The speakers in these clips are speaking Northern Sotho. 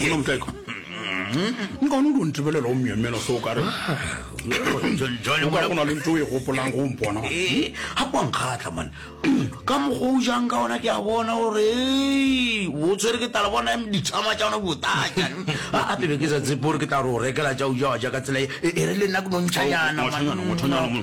Bona moteko. Nka no do ntebelela o myemyela so ka re. Jwale mona gona le ntwe e gopolang go mpona. Eh, ha kwa nkgatla man. Ka mogo o jang ka ona ke a bona gore o tswere ke tala bona em ditshama tša ona botata. A a pele ke sa tsepore ke tla re o rekela tša o jawa ja ka tsela e e re le nna ke no ntšhanyana. Ngwatshanyana, ngwatshanyana.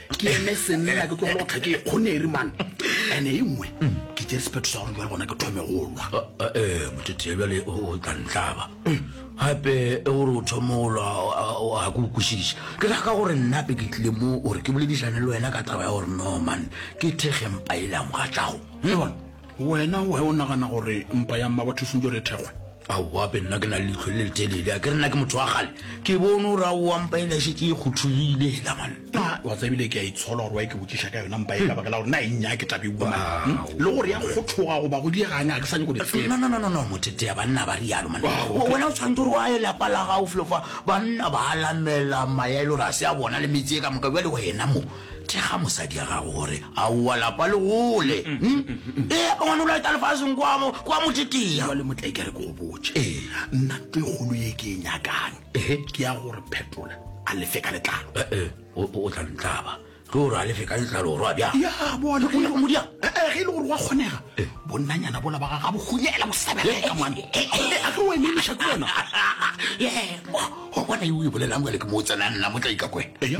ke eme senna ke tlogela go tlha ke kgoneri man ene e nngwe ke tse sephetho sa gore jale gona ke thome go lwa ee motetea bjale o tla ntlaba gape e gore o thome go lwa ga ke okwešiša ke ra ka gore nnape ke tlile mo gore ke boledišane le wena ka taba ya gore no man ke thekgempa e leng ga tšago le bona Wena why o nagana gore mpa ya mmabatho e swantšo re thekgwe? Aowa be nna ke na le leitlho le letelele, a ke re nna ke motho wa kgale, ke bone gore aowa mpa ele e šetše e kgothogile hela man. A wa tseba ebile ke a itshola gore why ke botšiša ka yona mpa e ka baka la gore na e nnya ke tla be bua man hmm? le gore ya kgothoga goba go dieganya ga ke sa nyako di tseba. No no no no no mothetea banna ba rialo man. Wena o tshwanetse gore wa ye lapa la gago flo fa banna ba alamela maya e le gore a se a bona le metse e ka moka bjale wena mo Thekga mosadi ya gago gore aowa lapa le gole. Ee, gona o laeta lefaseng kwa mo kwa mo tetea. Jwale motlai ke re ke go botše. Ee. Nna nto e kgolo ye ke e nyakang. Ehe. Ke ya gore phetola a lefe ka letlalo. Ee, o o tla ntlaba. Ke gore a lefe ka letlalo gore wa bjang. Ya bona Ke nyaka modia. Ee, ge e le gore wa kgonega. Bonnanyana bola ba ga ga bo hunyela bo sebeleka mane. A ke o ememiša ke bona. Ee, go bona e o e bolelang jwale ke mo o tsenang nna motlai ka kwena. Eya.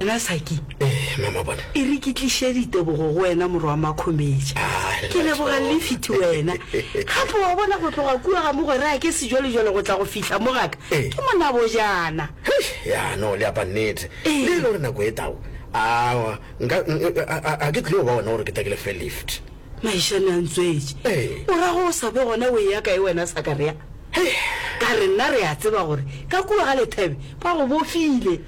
Wena Saki, Eh, mama bona. e re ke tliše ditebogo go wena morwa wa Makhometša. Ah, Ke Lerato. leboga lifiti wena. Gape wa bona go tloga kua ga mogwera ya ke sejwalejwale go tla go fihla mo gaka, Eh. ke monabojana. Hei, ya no le apa nnete Ee. le e le gore nako e tao awa nka n- e- a- a- a ke tlile go ba ona gore ke takele fe lift Maišane a ntswetše. Ee. O ra go o sa be gona o e ya kae wena Sakarea? Ka re nna re a tseba gore ka kua ga lethebe ba go bofile.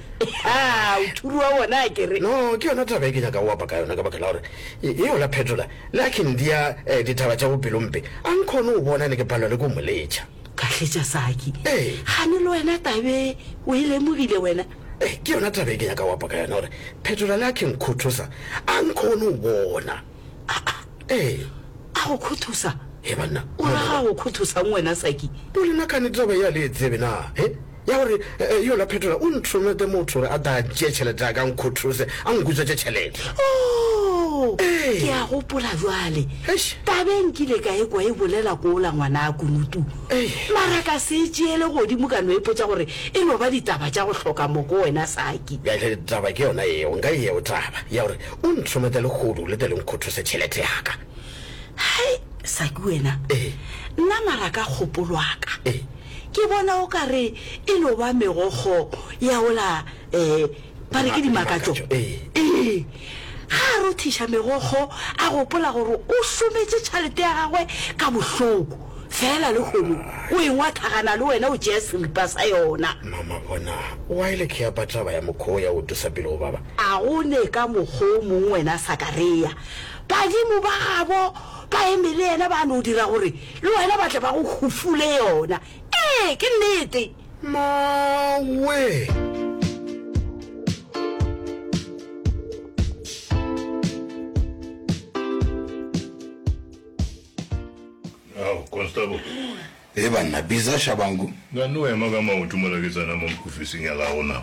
Haa, o thuri wa bona a kere. No, ke yona taba e ke nyaka go apa ka yona ka baka la gore e, e yola phetola le a khindia eh, ditaba tša bopelo mpe. A nkhono o bona ne ke palwa le ko mo letša. Kahletša Saki. Ee. Gane le wena tabe o e lemogile wena. Eh, ke yona taba e ke nyaka go apa ka yona gore phetola le a khinkhothosa a nkhono o bona. A-a-e, a go khuthusa? He banna. O ra ga go khuthusang wena Saki? O le nakane taba ye a le e tsebe na? He? Ya gore e, yola Phetola o ntromete motho gore a tle a tšee tšhelete ya ka a nkhuthuse, a nkutswetše tšhelete. Oo! Ee. Ke a gopola bjale. Eish. Tabeng ke ile ka e kwa e bolela ko ola ngwanaa Kunutu. Ei. Mara ka se e tšeele godimo ka no ipotša gore e no ba ditaba tša go hloka moko wena Saki. Bjale taba ke yona yeo, nka e yeo taba, ya gore O ntlhometsa lehodu le tle le nkgothose tšhelete ya ka. Hai, Saki wena! Ee. Nna mara ka kgopolo ya ka, Ee. ke bona o ka re e no ba megokgo ya wola, ee, ba re ke dimakatšo. Ee. Ee. Ge a rothiša megokgo, a gopola gore o šometše tšhelete ya gagwe ka bohloko. Feela lehono o e ngwathagana le wena o tšea seripa sa yona. Mama bona, wa e le ke apa taba ya mokho wo ya go tlosa pele go baba. A go ne ka mokgwa o mongwe, wena Sakarea? Badimo ba gabo ba eme le yena, ba no dira gore le wena ba tle ba go hufule yona. Ee, ke nnete. Mawe! Constable. He banna, biza Shabangu. Nga no ema ka maoto mola ke tsena mo mokofising ya la rona.